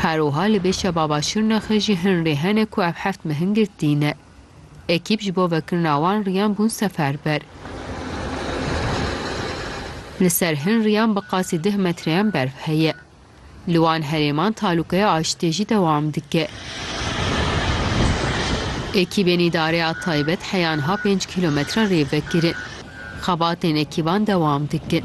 Her wiha li Bêşa Baba Şirnexê jî hin rê hene ku ev heft mehin girtîne. Ekîp ji bo vekirina wan riyan bûn seferber. Li ser hin riyan bi qasî deh metreyan berf heye. Li wan herêman talûkeya aşitê jî dewam dike. Ekîbên Îdareya Taybet heyan ha pênc kîlometre rê vekirin. Xebatên ekîban dewam dikin.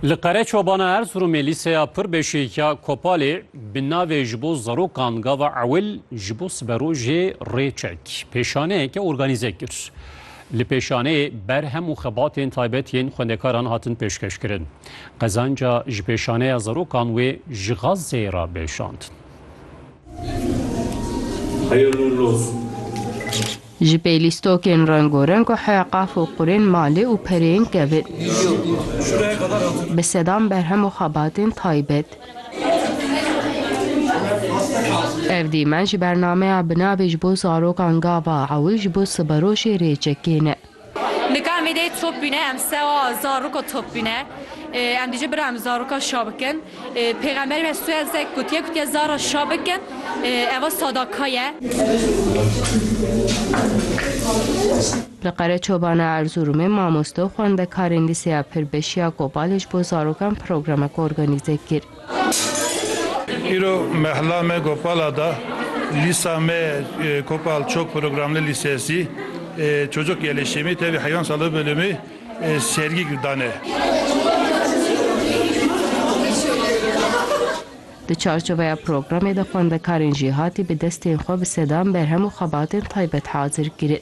Li Qereçobana Erziromê lîseya pir beşêkiya Kopalê bi navê Ji bo zarokan gava ewil ji bo siberojê rê çek pêşaneyeke organîze kir. Li pêşaneyê ber hem û xebatên taybet yên xwendekaran hatin pêşkeşkirin. Qezanca ji pêşaneya zarokan wê ji Xazzeyê re bêşandin. Ji pey lîstokên rengorenk û heqaf û qurên malê û pereyên kevin. Bi sedan berhem û xebatên taybet. Ev dîmen ji bernameya Binavê ji bo zarokan Gava Ewil ji bo siberoşê Rêçekê ne. Nika em êdî top bîne, em sewa zarûko top bîne. Em dî jî bira em zarûka şa bikin. Pêxemberê me sû ez ek gotiye ku tiye zara şa bikin. Eva sadaka ye. Li Qereçobana Erzurumê mamoste û xwendekarên lîseya Pirbeşiya Kobalê ji bo zarokan programek organîze kir. Îro mehla me Gopala da. Lîsa me Kopal çok programlı lisesi. Çocuk yerleşimi tabi hayvan sağlığı bölümü sergi dane. Di çarçoveya programê de xwendekarên jî hatî bi destên xwe bi sedan berhem û xebatên taybet hazir kirin.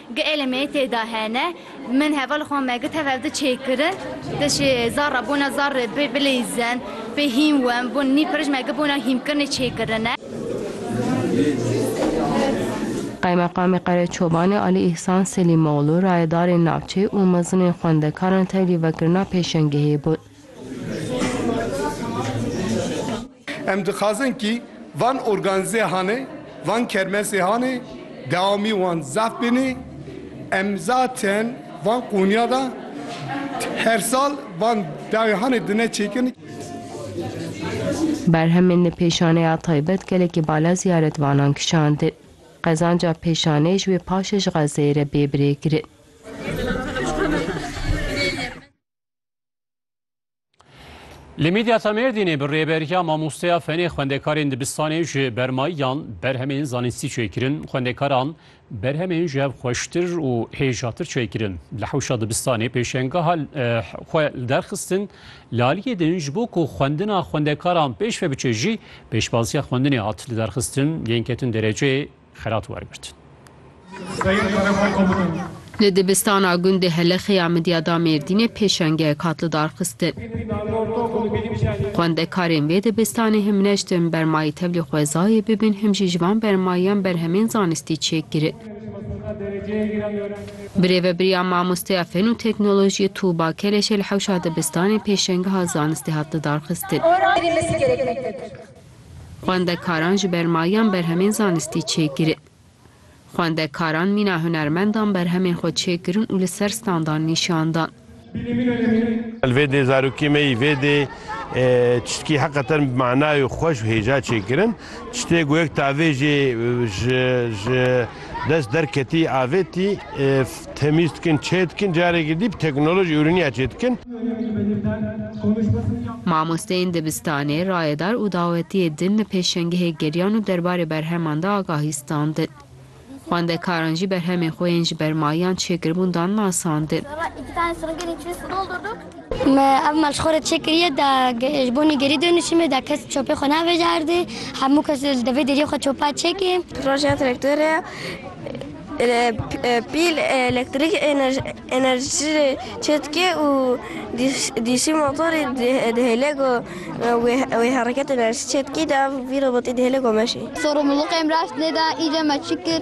Ge elê me yê têda hene. Min hevalê xwe me got hev ev di çê kirin. Di şê zar re bona zar rê pê bileyzin, pê hîm win bon nî pirij me got bona hîmkirinê çê kirine. Qaymeqamê Qereçobanê Alî Îhsan Selîmoglû rayedarên navçeyê û mezinên xwendekaran tevlî vekirina pêşengehê bûn. Em dixwazin kî van organîze hanê, van kermesê hanê dewamî wan zaf bînê. Em zaten van qûniya de her sal van dawî hanê dine çêkin. Berhemên li pêşaneya taybet gelekî bala ziyaretvanan kişandin. Qezanca pêşanê ji wê paşê ji Xezzeyê re bê birêkirin. Li Midyata Mêrdînê bi rêberiya mamosteya fenê xwendekarên dibistanê ji bermayiyan berhemên zanistî çêkirin. Xwendekaran berhemên ji hev xweştir û hêjatir çêkirin. Li hewşa dibistanê pêşengeha xwe li derxistin. Li aliyê din ji bo ku xwendina xwendekaran pêşve biçe jî pêşbaziya xwendinê hat li derxistin yên ketin dereceyê xelat wergirt. Li dibistana gundê Helexê ya Midyada Mêrdînê pêşengeyek hat lidarxistin. Xwendekarên vê dibistanê him ne ji tim bermayî tevlî xwezayê bibin him jî ji van bermayiyan berhemên zanistî çêk girin. Bi rêvebiriya mamosteya Fen û Teknolojiyê Tuba Keleşê li hewşa dibistanên pêşengeha zanistê hat lidarxistin. Xwendekaran ji ber mayan berhemên zanistî çêkirin. Xwendekaran mîna hunermendan berhemên xwe çêkirin û li ser standan nîşan dan. Li vê dê zarokê me yî vê dê çiştkî heqeten bi manay û xweş û hêja çêkirin. Çiştê ku yek tavê jê ji dest derketî avêtî Temîz dikin, çê dikin, carekî dî bi teknolojî ûriniya çê dikin. Mamosteyên dibistanê, rayedar û dawetiyê din li pêşengehê geriyan û derbarê berheman de agahî standin. Xwendekaran jî berhemên xwe yên ji ber mayiyan çêkiribûn dan nasandin. Me ev malxora çêkiriye da ji bo nêgerî dêrnişîme, da kes çopê xwe navêje erdê, hemû kes li devê deriyê xwe çopa çêkê. Projeya traktore. Pîl elektrîk enerjî çêdike û dîşî motorî dihêle ku wê hereket enerjî çêdike î de ev vî robotî dihêle ku meşê. Sorumluluk em rastnêda î de me çi kir?